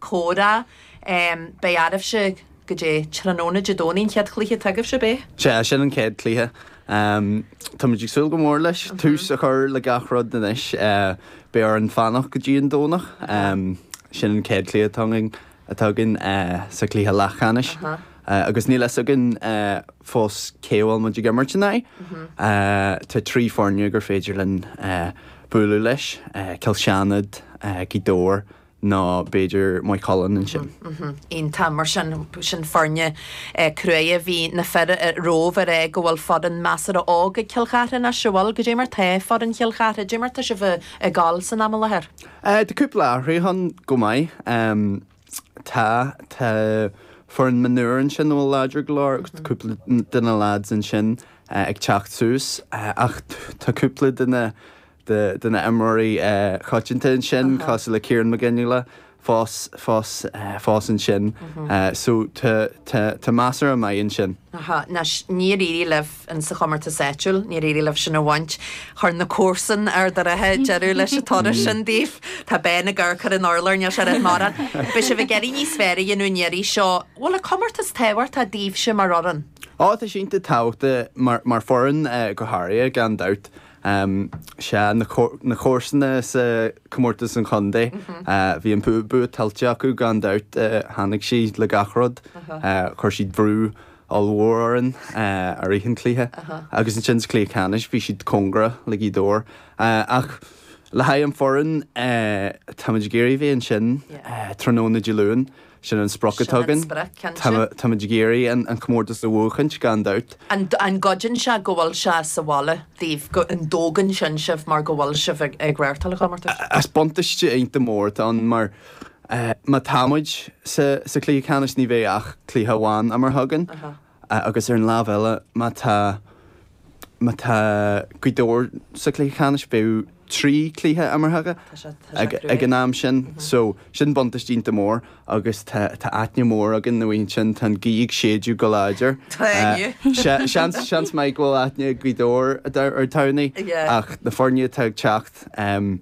comhrá. Beidh sibhse, cad é, tráthnóna Dé Domhnaigh an chéad chluiche agaibhse beidh? Sea, sin an chéad chluiche. Táimid ag súil go mór leis, tús a chur le gach rud anois. Beidh orainn fanacht go dtí an Domhnach. Sin an chéad chluiche atá againn, atá againn sa chluiche leathcheannais agus níl fhios againn fós cé a bhfuil muid ag imirt in aghaidh. Tá trí foirne gur féidir linn bualadh leis, Cill tSéadna, Gaoth Dobhair nó b'fhéidir Maigh Cuilinn ansin ann. Tá. Mar sin, sin foirne crua. Bhí na fir romhaibh a rá go bhfuil foireann measartha óg ag Cill Charthaigh anois, a bhfuil? Cad é mar atá foireann Chill Charthaigh. Cad é mar atá sibh ag gabháil san am i láthair. Eh, tá cúpla athrú ann go maith. Em, tá, tá foireann mionúr ansin a bhfuil láidir go leor agus tá cúpla de na lads ansin ag teacht suas. Eh, ach tá cúpla de na, de na imreoirí coitianta ansin cosúil le Ciarán Mac Fhionnghaile fós fós fós ansin so tá tá tá meascán maith ansin. Anois níor éirigh libh in sa chomórtas áitiúil, níor éirigh libh sin a bhaint. Chuir na comharsana deireadh leis an turas sin daoibh. Tá Ben ag amharc ar an urlár, níl sé ag rá mórán. Beidh sibh ag iarraidh níos fearr a dhéanamh an iarraidh seo. Bhfuil an comórtas tábhachtach daoibhse mar fhoireann? Ó tá sé iontach tábhachtach mar mar foireann go háirithe gan dabht. Um sea, na comharsana sa comórtas sa chontae, bhí an bua tuillte acu gan dabht, tháinig siad le gach rud, chuir siad brú ollmhór orainn i rith an chluiche agus ansin sa chluiche ceannais bhí siad cóngarach do Gaoth Dobhair ach le haghaidh an foireann, táimid ag iarraidh a bheith ansin tráthnóna Dé Luain. Sin an sprioc atá againn. Táimid ag iarraidh an comórtas a bhuachaint, gan dabht. An gcuidíonn sé go bhfuil sé sa bhaile daoibh, an dtógann sin sibh mar go bhfuil sibh ag reáchtáil an chomórtais? Is buntáiste iontach mór atá ann mar má táimid sa chluiche ceannais ní bheidh ach cluiche amháin imeartha againn. agus ar an lámh eile, má tá má tá gaoth dobhair sa chluiche ceannais, bheadh trí chluiche imeartha acu ag an am sin. So, sin buntáiste iontach mór agus tá tá aithne mhór againn ar an áit ansin, tá an ghaoth ag séideadh go láidir. Seans seans maith go bhfuil aithne ag Gaoth Dobhair ar Tamhnaigh ach na foirne atá ag teacht, em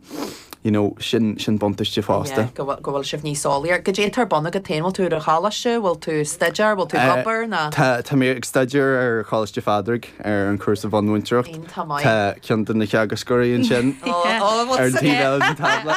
you know sin sin buntáiste fosta. Yeah go bhfuil go bhfuil sibh níos eolaí air cad é atá ar bun agat féin bhfuil tú ar an choláiste bhfuil tú ag staidéar bhfuil tú ag obair nó. Tá tá mé ag staidéar ar Choláiste Phádraig ar an cúrsa bhunmhúinteoireacht tá ceann de na teagascóirí ansin ar an taobh eile den tábla.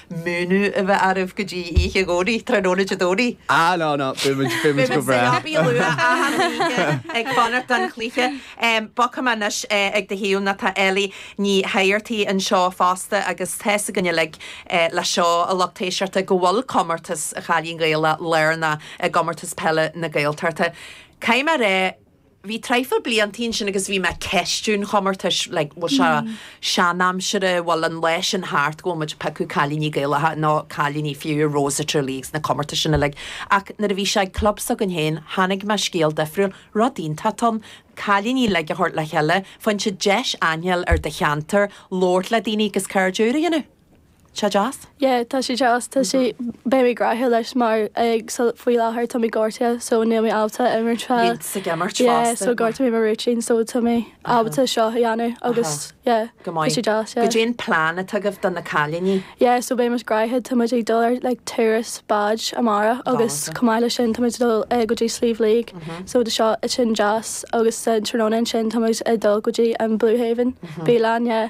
múineadh a bheith oraibh go dtí oíche Dhomhnaigh, tráthnóna Dé Domhnaigh. Ah no no, beidh muid, beidh muid go breá. Beidh muid sa leabaidh luath achan oíche ag fanacht don chluiche. Bogfaidh mé anois ag do thaobh nó tá Ellie Ní hÉigeartaigh anseo fosta agus tá's againn uilig le seo, a lucht éisteachta, go bhfuil comórtas Chailín Gaelach lárnach i gComórtas Peile na Gaeltachta. Caithfidh mé a rá, bhí traidhfil blianta ansin agus bhí mé ag ceistiú an chomórtais, like, bhfuil sé seanaimseartha, bhfuil an lá sin thart go bhfuil muid ag piocadh cailíní Gaelacha, nó cailíní fiú, i Rose of Tralee agus na comórtais sin uilig. Ach nuair a bhí sé ag club s'againn féin, chonaic mé scéal difriúil, rud iontach atá ann, cailíní uilig a thabhairt le chéile, faigheann siad deis aithne a fháil ar do cheantar, labhairt le daoine agus cairde úra a dhéanamh. sé deas? Yeah, tá sé deas, tá sé, beidh mé gnoitheach leis mar ag so faoi láthair tá mé gortaithe so níl mé ábalta imirt fá, Iad ag imirt fosta, yeah, so ghortaigh mé mo rúitín so tá mé ábalta seo a dhéanamh agus yeah, go maith, tá sé deas, yeah. Goidé an plean atá agaibh do na cailíní? Yeah, so beimid gnoitheach, táimid ag dul ar like turas báid amárach agus chomh maith leis sin táimid ag dul eh go dtí Sliabh Liag so do seo eh sin deas agus an tráthnóna ansin táimid ag dul go dtí an Blue Haven, Bialann, yeah,